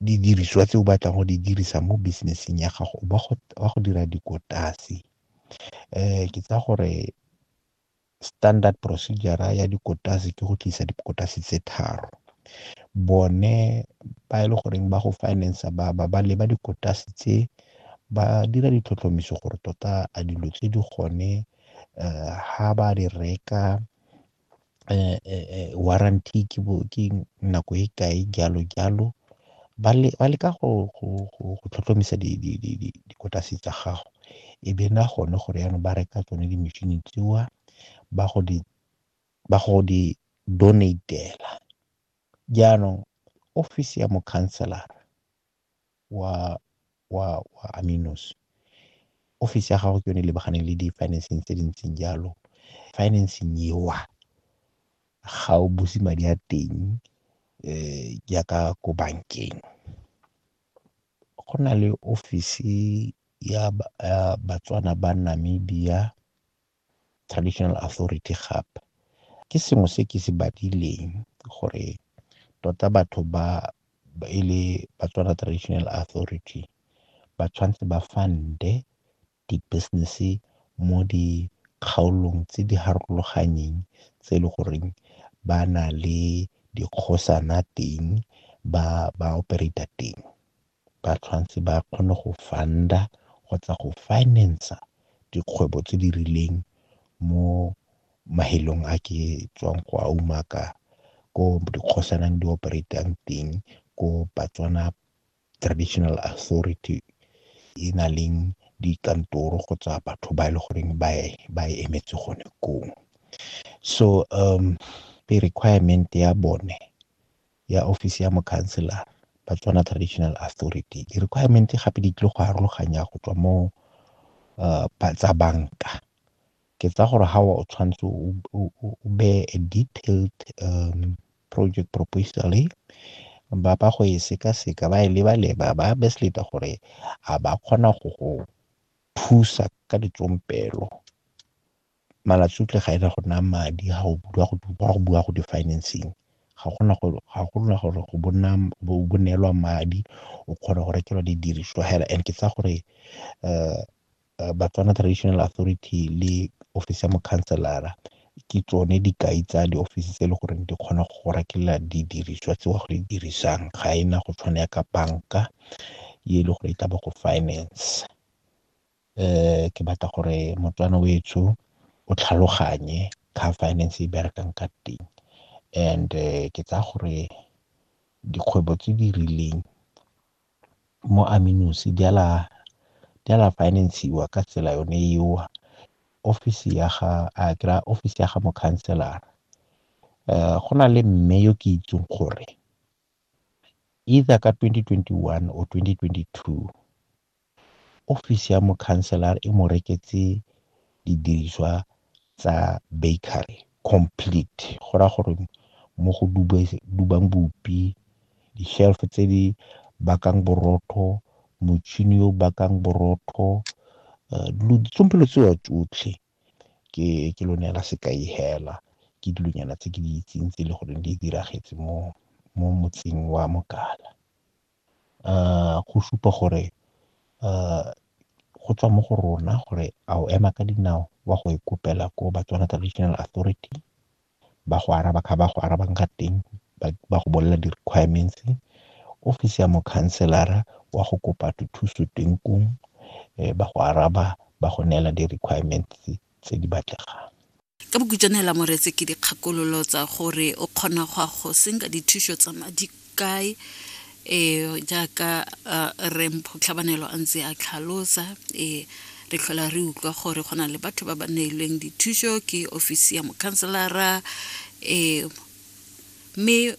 didiriswa tse o batlang go di dirisa mo business-eng ya gago ba go dira dikotase. Ke tsaya gore standard procedure-ra ya dikotase ke go tlisa dikotase tse tharo. Bone ba e le goreng ba go finance-a ba leba dikotase tse, ba dira ditlhotlhomiso gore tota a dilo tse di gone ga ba di reka warranty ke bo ke nako e kae jalo jalo, ba leka go tlhotlhomisa dikotase tsa gago e be na gone gore yanong ba reka tsone di machine tseo ba go di ba go di donate-ela jaanong ofisi ya mokhanselara. wa Aminos. Office ya gago ke yone e lebaganeng le di-financing tse di ntseng jalo. Financing eo ga o buse madi a teng jaaka ko bankeng. Go na le office ya Batswana ba Namibia traditional authority gap. Ke sengwe se ke se badileng gore tota batho ba e le Batswana Traditional Authority ba tshwanetse ba fund-e di-business-e mo dikgaolong tse di harologanyeng tse e le goreng ba na le dikgosana teng, ba operate-a teng. ba tshwanetse ba kgone go fund-a kgotsa go finance-a dikgwebo tse di rileng mo mafelong a ke tswang go a umaka, ko dikgosanang di operate-ang teng, ko Batswana Traditional Authority e na leng dikantoro kgotsa batho ba e le goreng ba e ba e emetse gone koo. So requirement ya bone ya ofisi ya mokhanselara, Batswana Traditional Authority. Di-requirement-e gape di tlile go arologanya go tswa mo tsa banka, ke tsaya gore ga o tshwanetse o beye a detailed project proposal-e, ba ba go e sekaseka ba e leba-leba ba gore a ba kgona go go thusa ka ditsompelo. Malatsutle ga ena go naya madi ga go bua go bua go di-financing, ga gona gore ga gona gore go bona bo bo neelwa madi o kgona go rekelwa di diriswa hela and ke tsaya gore Batswana Traditional Authority le ofisi ya mokhanselara ke tsone dikai tsa di ofisi tse e le goreng di kgona go rekelela di diriswa tse wa go di dirisang, ga ena go tshwana ya ka banka e le gore e ka ba go finance. ke batla gore moTswana o etsho o tlhaloganye ka ga finance e berekang ka teng. And ke tsaya gore dikgwebo tse di rileng mo Aminosi di a la finance-siwa ka tsela yone eo. Office ya ga a kry-a office ya ga mokhanselara, go na le mme yo ke itseng gore either ka twenty twenty one or twenty twenty two. ofisi ya mokhanselara e mo reketse didiriswa tsa bakery complete, go raya gore mo go dubang bupi, di-shelf tse di bakang borotho, motšhini o bakang borotho, dilo tsompielo tseo tsotlhe ke ke lo neela sekai hela ke dilonyana tse ke di itseng tse e le goreng di diragetse mo mo motseng wa Mogala. go supa gore go tswa mo go rona gore a o ema ka dinao wa go e kopela ko Batswana Traditional Authority, ba go araba ka ba go arabang ka teng, ba go bolelela di-requirements. Ofisi ya mokhanselara wa go kopa dithuso teng koo, ba go araba ba go neela di-requirements tse di batlegang. ka bokhutšwane hela moretse ke dikgakololo tsa gore o kgona go a go senka dithušo tsa madi kae um jaaka rempho tlhabanelo a ntse a tlhalosa um re tlhola re utlwa gore go na le batho ba ba neilweng dithušo ke ofisi ya mokhanselara um mme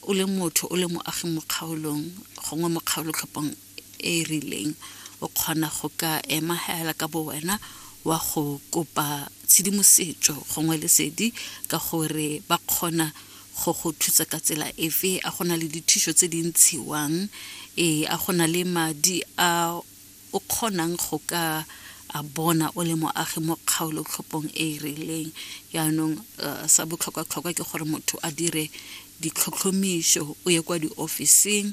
o le motho o le moagi mo kgaolong gongwe mo kgaolotlhopong e e rileng, o kgona go ka ema hela ka bowena wa go kopa tshedimosetso gongwe lesedi ka gore ba kgona go go thusa ka tsela efe a go na le dithuso tse di ntshiwang ee a go na le madi a o kgonang go ka a bona o le moagi mo kgaolo tlhopong e e rileng yaanong eh, sa botlhokwa-tlhokwa ke gore motho a dire ditlhotlhomiso o ye kwa diofising